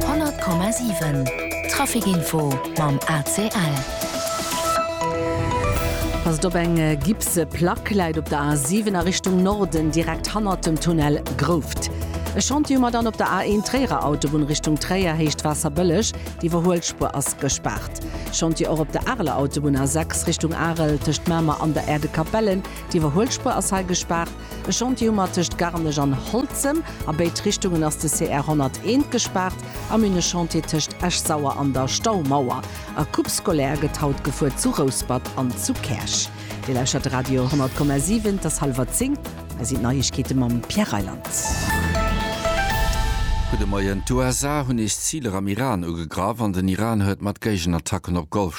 100,7 Trafic info mam ACL. Ass et op eng gipse Plack, läit op der A7 a Richtung Norden direkt hannert dem Tunnel Grouft. E Chantier hu mer dann op der A1 Tréierer Autobunn Richtung Tréier, Héicht Waasserbëlleg, d'Iwwerhuelspuer ass gespaart. Chantier och op der Areler Autobunn A6 Richtung Arel tëscht Mamer an der Äerdekapellen, d'Iwwerhuelspuer ass hei gespaart. E Chantier hu mer tëscht Garnech an Holzem. A béid Richtungen ass de CR 101 gespaart. A mir hunn e Chantier tëscht Esch-Sauer an der Staumauer. A Coupe scolaire gëtt haut gefuer zu Rouspert an zu Käerch. Dir lauschtert de Radio 100,7. Et ass hallwer zéng. Hei sinn d'Neiegkeete mam Pierre Reyland. Gudde Moien. D'USA hunn nees Ziler am Iran ugegraff an den Iran huet mat Géigenattacken op Golfstad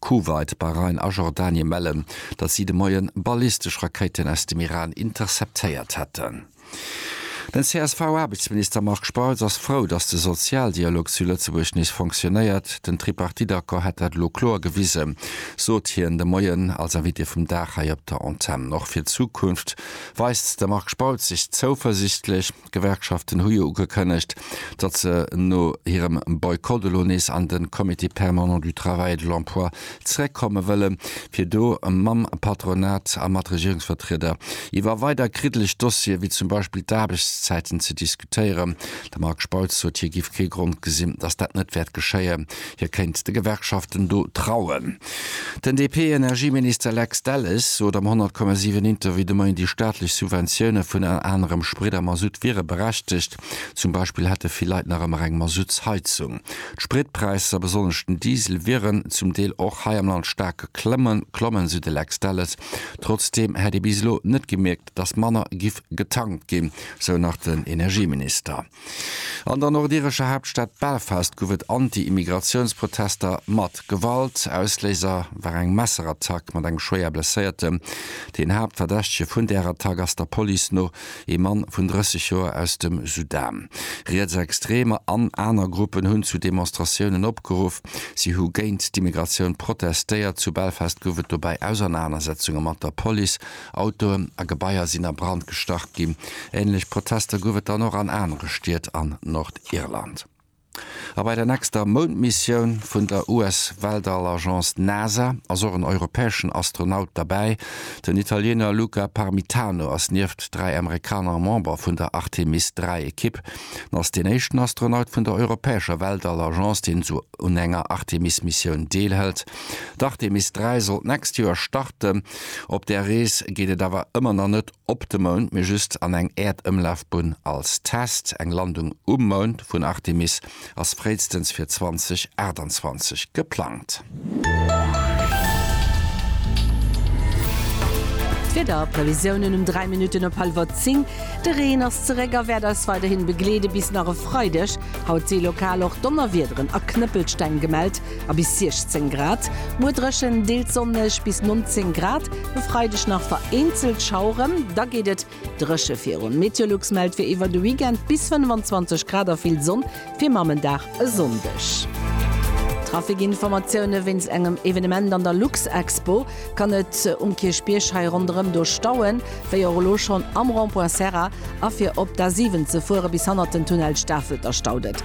Kuwait, Bahrain a Jordanien mellen, datt si de Moien ballistesch Rakéiten aus dem Iran interceptéiert hätten. Den CSV-Aarbechtsminister Marc Spautz ass frou, datt de Sozialdialog zu Lëtzebuerg nees fonctionéiert. Den Tripartite-Accord hätt dat elo kloer gewisen, sot hien de Moien als Invité vum Dag hei op der Antenn. Och fir d'Zukunft weist de Marc Spautz sech zouversiichtlech. D'Gewerkschaften hu jo ugekënnegt, datt se no hirem Boykott elo nees an de Comité permanent du travail et de l'emploi zeréckkomme wëllen, fir do mam Patronat a mat Regierungsvertrieder iwwer weider kriddeleg Dossiere wéi zum Beispill d'Aarbechtszäiten ze diskutéieren. De Marc Spautz sot, hie géif kee Grond gesinn, datt dat net wäert geschéien. Hie kéint de Gewerkschaften do trauen. Den DP-Energieminister Lex Delles sot am 100,7 Interview de Moien, déi staatlech Subventioune vun ënner anerem Sprit a Masutt wiere berechtegt. Zum Beispill hätte vill Leit nach ëmmer eng Masuttsheizung. D'Spritpräisser, besonnesch den Diesel, wieren zum Deel och hei am Land staark geklommen, sou de Lex Delles. Trotzdeem hätt ee bis elo net gemierkt, datt manner giff getankt ginn, sou nach den Energieminister. An der nordirescher Haaptstad Belfast gouf et Anti-Immigratiounsprotester mat Gewalt. Ausléiser war eng Messerattack mat engem schwéier Blesséiertem. Deen Haaptverdächtege vun där Attack ass der Police no ee Mann vun 30 Joer aus dem Sudan. Rietsextreemer an aner Gruppen hunn zu Demonstratiounen opgeruff. Si hu géint d'Immigratioun protestéiert. Zu Belfast gouf et dobäi Ausernanersetzunge mat der Police. Autoen a Gebaier sinn a Brand gestach ginn. Ähnlech Protester gouf et dann och an anere Stied an Nordirland. A bei der nächster Moundmissioun vun der US-Weltall-Agence NASA ass och en europäeschen Astronaut derbäi. Den Italiener Luca Parmitano ass nieft dräi Amerikaner Member vun der Artemis 3 Ekipp. En ass deen éischten Astronaut vun der europäescher Weltall-Agence, deen un enger Artemis-Missioun deelhëlt. D'Artemis 3 sollt d'nächst Joer starten. Op där Rees geet et awer ëmmer nach net op de Mound, mee just an eng Äerdëmlafbunn als Test. Eng Landung um Mound vun Artemis ass fréistens fir 2028 geplangt. D'Wieder Previsiounen um 3 Minutten op hallwer 10, De Reen ass zeréck a wäert eis weiderhin begleede bis nach e Freideg. Haut si lokal och Donnerwiederen a Knëppelsteng gemellt. a bis 16 Grad, muer dréchen, deels sonneg bis 19 Grad, e Freideg nach vereenzelt Schaueren, da geet et dréche virun. Meteolux mellt fir iwwer de Weekend bis 25 Grad a vill Sonn fir Mamenddag e Sonndeg. Trafikinformatioune, Wéinst engem Evenement an der Luxexpo kann et um Kierchbierg hei ronderëm do stauen, wéi och elo schonn am Rond-Point Serra a fir op d'A7 ze fuere bis hannert den Tunnel Stafelter staut et.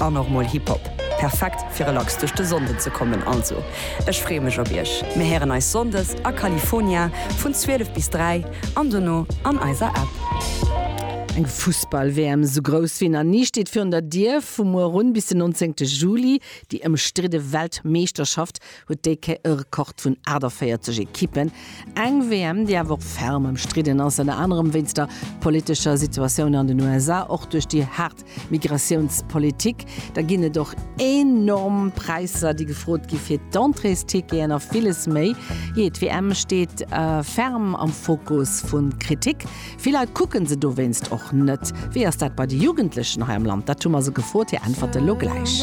An och mol Hip Hop. Perfekt fir relax duerch de Sonnden ze kommen. Also ech freeë mech op iech. Mir héieren eis Sonndes a California vun 12 bis 3 an dono an eiser App. Eng Fussball-WM esou grouss wéi nach ni steet virun der Dier. Vu muer un bis den 19 Juli déi ëmstridde Weltmeeschterschaft huet dee Kéier e Rekord vun 48 Ekippen. Eng WM, déi awer och ferm ëmstridden ass, ënner anerem wéinst der politescher Situatioun an den USA, och duerch déi haart Migratiounspolitik. Da ginn et och enorm Präisser, déi gefrot gi fir d'Entréesticketen a villes méi. Jee, d'WM steet ferm am Fokus vu Kritik. Vill Leit kucke se dowéinst och net. Wéi ass dat bei de Jugendlechen hei am Land? Dat hu mer se gefrot. Hir Äntwerte lo gläich.